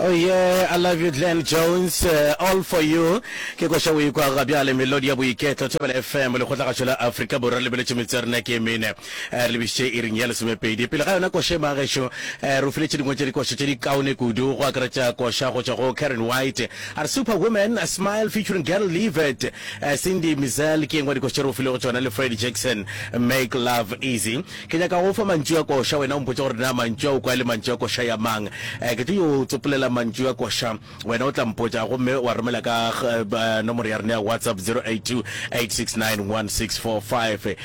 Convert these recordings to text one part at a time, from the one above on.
Oh yeah, I love you Glenn Jones, uh, all for you. Ke kwa xa o ikwa ga bjale melodi ya boiketlo Thobela FM le kgotlagašo la Afrika Borwa le beletše metse ya rena ke mene. Eh, Re lebišitše iring ya lesomepedi. Pele ga yona koša e magešo, eh, re o filetše dingwe tša dikoša tše di kaone kudu go akaretša koša go tšwa go Karen White. A re Superwoman, a smile featuring Girl Leave It. Eh, Cindy Mizel ke engwe ya dikoša tše re o filego tšona le Fred Jackson, Make Love Easy. Ke nyaka go o fa mantšu a koša. Wena o mpotša gore na mantšu a o kwa e le mantšu a koša ya mang. Ke tlo yo tsopolela mantšu a koša, wena o tla mpotša gomme wa romela ka nomoro ya rena ya WhatsApp 0828691645.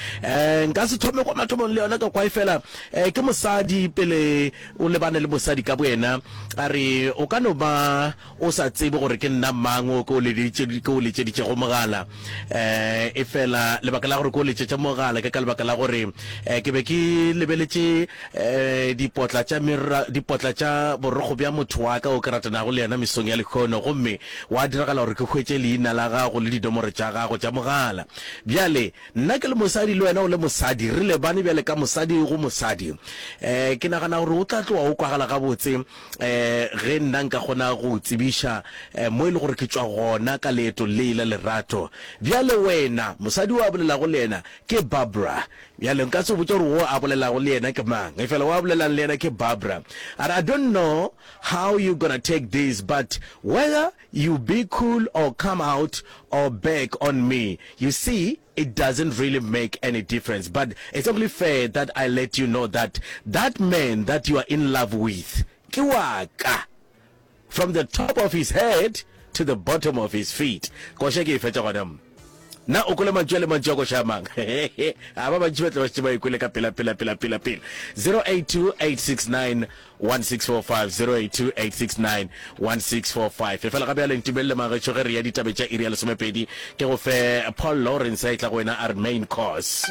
Nka se thome kwa mathomong le yona ka kwa efela ke mosadi pele o lebane le mosadi ka boyena a re o ka no ba O sa tsebe gore ke nna mang o ke o letše, ke o letšeditšego mogala. Eh, efela lebaka la gore ke o letšetše mogala ke ka lebaka la gore eh, ke be ke lebeletše eh, dipotla tša mera, dipotla tša borokgo bja motho wa ka o ke ratanago le yena mesong ya lehono, gomme gwa diragala gore ke hwetše leina la gago le dinomoro tša gago tša mogala. Bjale, nna ke le mosadi le wena o le mosadi, re lebane bjale ka mosadi go mosadi. Eh, ke nagana gore o tla tloga o kwagala gabotse. ge nna nka kgona go o tsebiša mo e le gore ke tšwa gona ka leetong le la lerato. Bjale wena, mosadi o a bolelago le yena ke Barbara. Bjale nka se botša gore wo a bolelago le yena ke mang, efela wo a bolelang le yena ke Barbara. A re, I don't know how you gonna take this, but whether you be cool or come out or back on me, you see, It doesn't really make any difference but it's only fair that I let you know that that man that you are in love with ke wa ka from the top of his head to the bottom of his feet. Koša ke e fetša gona mo. Na o kwele mantšu a le mantšu a koša a mang? A ba bantši ba tle ba šetše ba e kwele ka pela pela pela pela pela. 082 869 16450828691645165 efela ga bjale ntumelele magetšo ge re ya ditabe tša iri ya lesomepedi ke go fe paul lawrence a e tla go wena a re main course